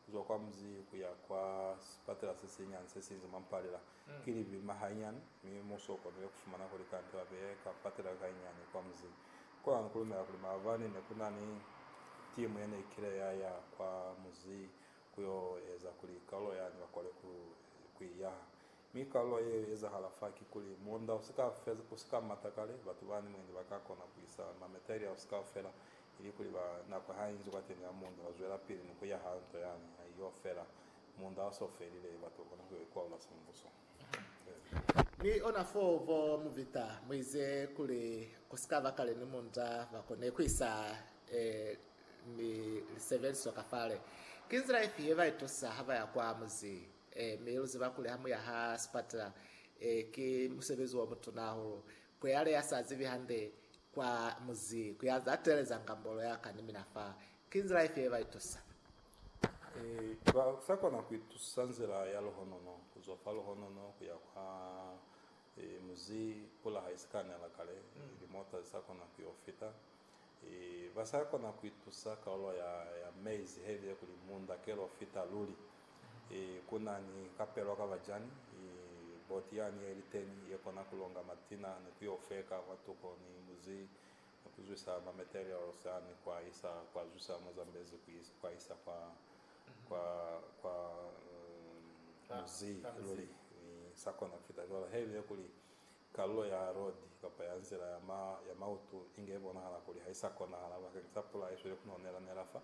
kuzwa kwa muzi kuya kwa sipatela sesinyani sesiinzi mwa Mpalela ki lipima hainyani, mi muuso ukonile kufumana kuli kante babeye ka patela kainyani kwa muzi. Konani kulumela kuli maabani nekunani timu yeneikile yaya kwa muzi kuyo eza kuli kaulo yani bakole kuiyaha, Mi kalulo ye ezahala fa kikuli, muunda usika feza, usika mata kale, batu bani mwendi baka kona kuisa mameter ya usi kaufela, ili kuli ba, nako ha inzi kwateni ha muunda wa zwela pili ni kuya ha nto yani, ha iyo fela. Muunda wa so felile, batu ba kona kuyo ikwaula sembuso. Ee. Ni ona foo bo Muvita muize kuli, kusikaba kale ni muunda ba kone kuisa ee, ni lisebeliswa ka fale. Ki nzila ifi ye ba itusa ha baya kwa muzi? Ee, mi lu ziba kuli ha mu ya ha sipatela, ee, ki musebezi o mutuna hahulu. Ku ya le ya sa zibi hande kwa muzi, ku ya za teeleza ngambolo ya ka ni mina fa. Ki nzila ifi ye ba itusa? Ee, ba sa kona ku itusa nzila ya luhonono, ku zwa fa luhonono ku ya kwa, ee, muzi, pula ha i si ka nela kale, limota zi sa kona ku yo fita. Ba sa kona ku itusa kalulo ya maize he bile kuli munda ke lo fita luli. Ku na ni kapelo ka bajani, boti yani ye li teni ye kona ku longa matina ni ku yo feka kwa tuko ni muzi ni ku zwisa ma materials ani ku a isa kwa zwisa mwa Zambezi ku a isa kwa muzi luli. Sa kona ku fita cwalo he bile kuli Kalulo ya rodi kapa ya nzila ya ma, ya mautu inge ibonahala kuli ha i sa konahala bakeng sa pula isweli ku nela-nela fa,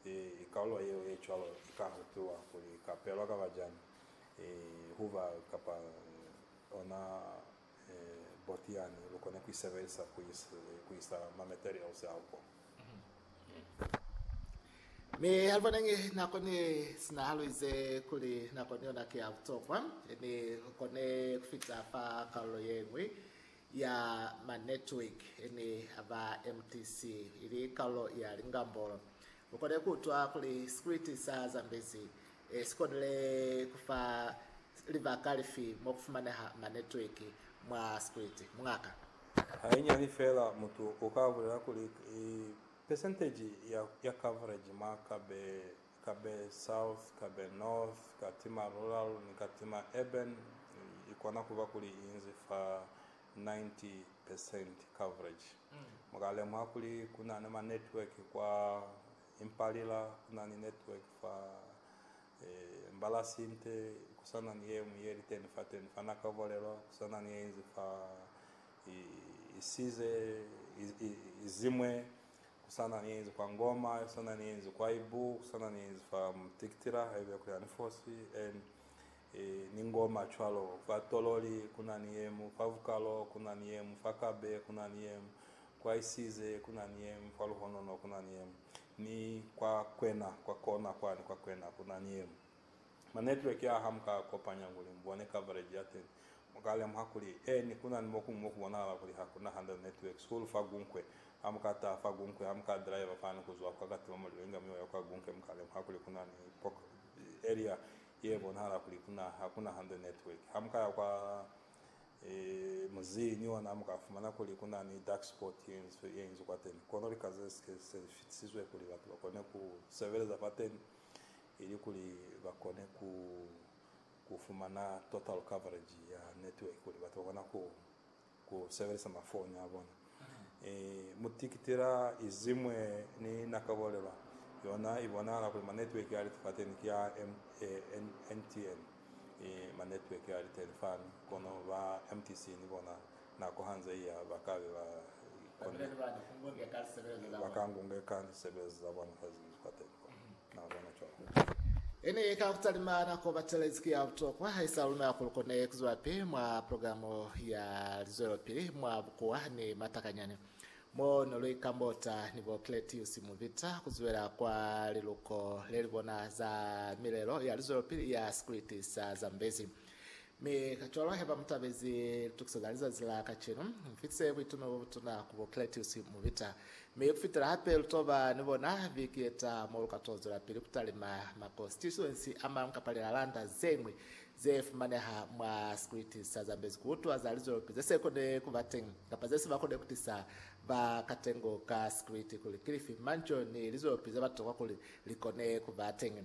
i, i kalulo yeo ye cwalo i ka hutiwa kuli i ka pelwa kaba jani, i, huba kapa ona, e, boti yani lu kone ku i sebelisa ku isa, ku isa ma materials ao ko. Mi Alvaneng nako ne sina haluize kuli nako ni yona ki ya butokwa ni kone kufita fa kalulo yeñwi ya ma network ni aba MTC ili kalulo ya lingambolo. Mukone kuutwa kuli sikriti sa Zambezi sikonile kufa libaka lifi mokufumaneha ma network mwa sikriti, muñaka. Hainyiani feela mutu u ka bulela kuli pesenteji ya coverage mwa Kabe South, Kabe North, Katima Rural ni Katima Urban i kona ku ba kuli i inzi fa 90 percent coverage. Mu ka lemuha kuli ku na ni manetwork kwa Impalila, ku na ni network fa Mbala sinte kusana ni yeñwi yeli teni fateni fa naka bolelwa kusana ni yeinzi fa isize izimwe kusana ni yeinzi kwa Ngoma kusana ni yeinzi kwa Ibu kusana ni yeinzi fa Mtikitila haiba yakuli ani fosi en ni Ngoma cwalo fa Tololi kuna ni yemu fa Vukalo kuna ni yemu fa Kabe kuna ni yemu kwa Isize kuna ni yemu fa Luhonono kuna ni yemu Ni kwa kwena, kwa kona kwani kwa kwena kuna ni yemu ma network a ha mu ka kopanya kuli mu bone coverage ya teni, mu ka lemuha kuli eni kuna ni mokuñwi mo ku bonahala kuli ha kuna 100 network school fa Gunkwe. Ha mu ka taha fa Gunkwe, ha mu ka driver fani kuzwa kwa Katima Mulilo inga mi oya kwa Gunkwe, mu ka lemuha kuli kuna ni area ye bonahala kuli kuna, ha kuna 100 network. Ha mu ka ya kwa. Muzeñi wa naa mu ka fumana kuli ku na ni dark spot ye nzwi ye inzwi kwateni, kono lika ze si ke se li fitisizwe kuli batu ba kone ku sebeleza kwateni ili kuli ba kone ku ku fumana total coverage ya network kuli batu ba kona ku ku sebelisa mafoni a bona. I mu tikitela izimwe ni na kabolelwa yona i bonahala kuli manetweki a li fateni ki a MTN, i manetweki a li teni fani, kono ba MTC ni bona nako hanze iya ba ka be ba konile kuli ba ka ngungeka lisebelezo za bona fa zili fateni. Ene ye ka ku talima nako batelezi ki ya butokwa haisa luna kuli kone ku zwelapili mwa programo ya lizwelopili mwa bukuwa ni matakanyani mo ne lu ikambota ni bo Cletius Muvita ku zwela kwa liluko le li bona za milelo ya lizwelopili ya Sikriti sa Zambezi. Mi kacwalo heba mutabezi litukiso za lizazi la kacenu, mufitise buitume bobutuna ku bo Cletius Mubita, mi kufitela hape lutoba ni bona viki yetaha mo luka to zwelapili kutalima ma konsituensi amañwi kapa lilalanda zeñwi ze fumaneha mwa sikwiti sa Zambezi kuutwa za lizwelopi zese kone kuba teñi kapa zese bakone kutisa ba katengo ka sikwiti kuli kilifi manzhio ni lizwelopi zeba tokwa kuli likone kuba teñi.